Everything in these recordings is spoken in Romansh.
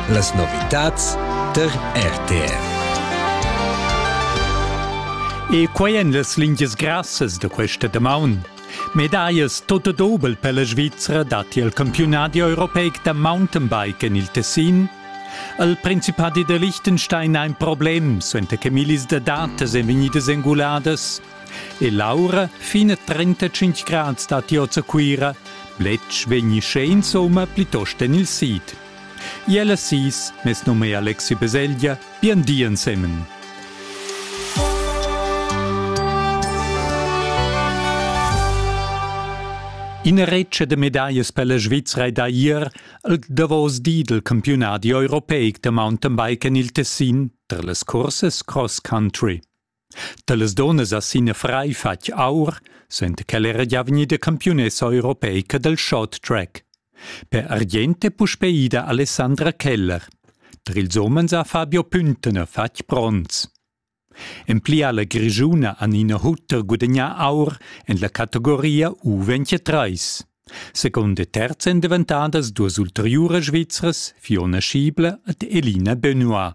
Las novitads tar RTR. E quai en las lingias grassas da questa damaun. Medaias tot dobel per la Svizzera datti al campiunadi europeic da Mountainbike en il Tessin. Al Principadi da Liechtenstein ein ein Problem, suenter che millis da datas ein vegnidas enguladas E l'aura fin a 35 grads datti oz a Cuira. Bletsch vegni sche insomma plitost en il sid. Iela sis, mes num è Alexi Beselgia, bien di ensemen. Ina retscha de medallas per la Svizzera da ier al davos di del campionati europeic de mountainbike en il Tessin tra las courses cross country. Talas donas ha sin frai fatg aur, senta ch'el era gia vegnida campiunessa europeica dal short track. Per Argient è puspè ida Alessandra Keller. Per ils umens ha Fabio Püntener fatg bronz. En pli ha la Grischuna Anina Hutter gudagnà aur en la categoria U23. Seconda e terza èn daventadas duas ulteriuras Svizras, Fiona Schiebler ed Elina Benoit.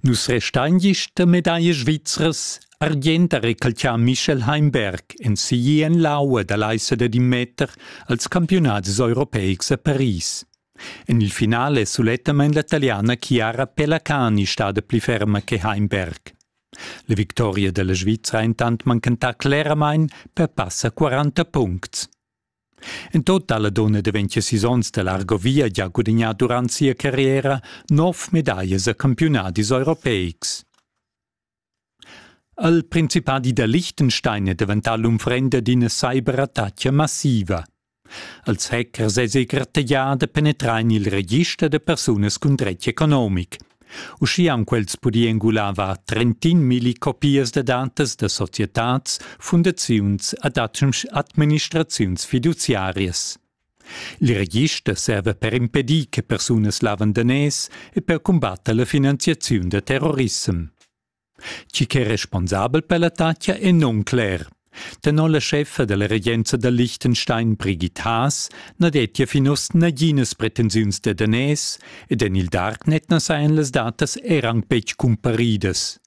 Nus restain gist da medaglia svizras, argient ha recalcià Michel Heimberg en siglir en l'aua da l'aissa da in meter als campiunats europeics a Paris. En il finale è sulettamain la taliana Chiara Pelacani stada pli ferma che Heimberg. La victoria della Svizzera intant mancantà cleramain per passa 40 puncts. En tot ha la dunna da 26 onns da l'Argovia gia gudagnà durant sia carriera nov medaglias a campiunadis europeics. Il principadi da Liechtenstein è daventà l'unfrenda d'ina cyberattacca massiva. Els hackers è segratteglià da penetrar en il register da persunas cun dretg economic. Uschia han quels pudì engular var trentin milli copias da datas da societads, fundaziuns ed administraziuns fiduziarias. Il register serva per impedir che persunas lavandanès e per cumbatter la finanziaziun da terrorissem. Tgi ch'è responsabel per l'attacca è nuncler. Tenor la scheffa dalla regenza da Liechtenstein Brigitte Haas na dettia fin oz naginas pretensiuns da daners ed en il Darknet na sajan las datas er anc betg cumparidas.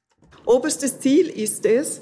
Oberstes Ziel ist es,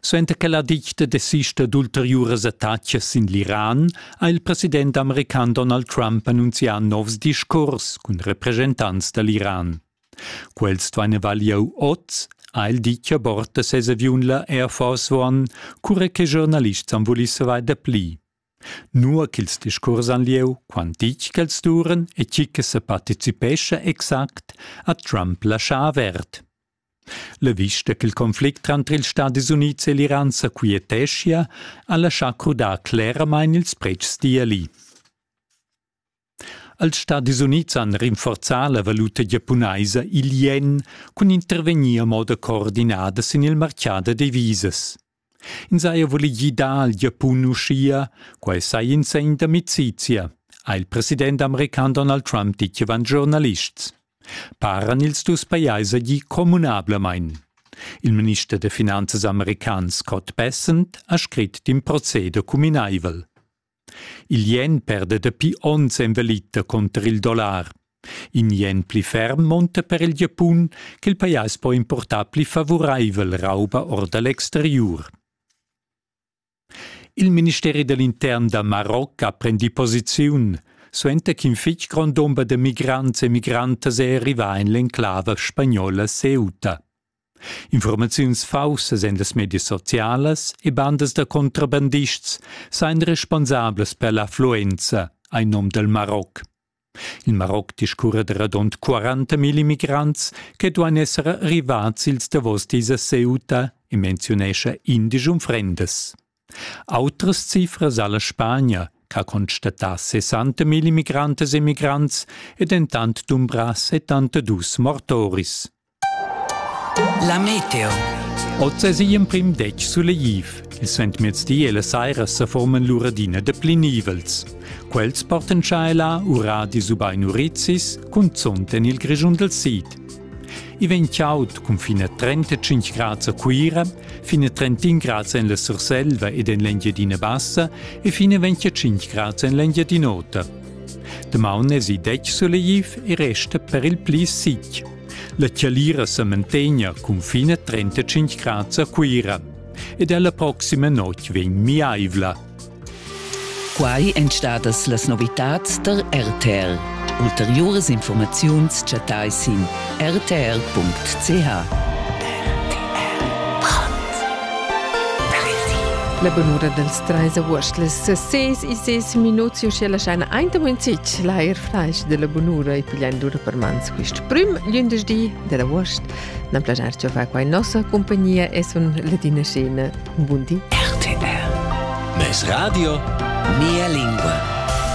Suenter che la ditta desista d'ulteriuras attacas sin l'Iran ha il president american Donald Trump annunzià novs discurs cun represchentants da l'Iran. Quels duain avalir oz, ha el ditg a bord da ses aviun la Air Force One, cura che giornalists han vulì savair dapli. Nua ch'ils discurs han lieu, quant ditg ch'els duran e tgi che sa participescha exact, ha Trump laschà avert. La vista ch'il conflict tranter ils Stadis Unids e l'Iran sa quieteschia ha laschà crudar cleramain ils pretschs d'Iali. Als Stadis Unids han rinforzà la valuta giapunaisa il ien cun intervegnir a moda coordinada sin il martgà da devisas. Ins haja vuli gidar al Giapun uschia, quai saja in segn d'amicizia, ha il president american Donald Trump ditg avant giornalists. Paran ils dus pajais agì communablamain. Il minister da finanzas american Scott Bessent ha scrit d'in proceder cuminaivel. Il ien perda dapi onns envalita cunter il dollar. In ien pli ferm monta per il Giapun ch'il pajais po importar pli favuraivel rauba or da l'exteriur. Il ministeri dell'intern da Maroc ha prendi posiziun, suenter ch'in fitg grond dumber da migrants e migrantas è arrivà en l'enclava spagnola Ceuta. Informaziuns faussas en las medias socialas e bandas da contrabandists sajan responsablas per l'affluenza, hai num dal Maroc. Il Maroc discurra da radund 40.000 immigrants che duan esser arrivads ils davos dis a Ceuta e menziunescha indisch unfrendas. Autras cifras alla Spagna, che ha constatà 60.000 migrantes e migrants e dentant dumbrà 72 mortoris. La meteo. Oz es igl emprim detg sulegliv. Il Sentmezdi e la saira sa forman lur adina de pli nivels. Quels portan tschaela uradis ubain urizis, cunzont en il Grischun del Sid. I vegn chaud cun fin a 35 grads a Cuira, fin a 31 grads en la Surselva ed en l'Engiadina Bassa e fin a 25 grads en l'Engiadin'Ota. Damaun es i detg sulegliv e resta per il pli sic. La Chialira sa mantegna cunfina 35 grad a Cuira ed è la proxima notg vegn miaivla. Quai èn stadas las novitads tar RTL. Ulteriuras informaziuns chattai sin rtl.ch. La bunura dels treis agost les ses e ses minuts uschia laschain aint in zic l'air flash della bunura e pigliando per mans Quist prüm glündesdi dad avuost nan plajar giò far qua in nossa compagnia e sun Ladina Schene. Un bun di. RTR. Meis radio, mia lingua.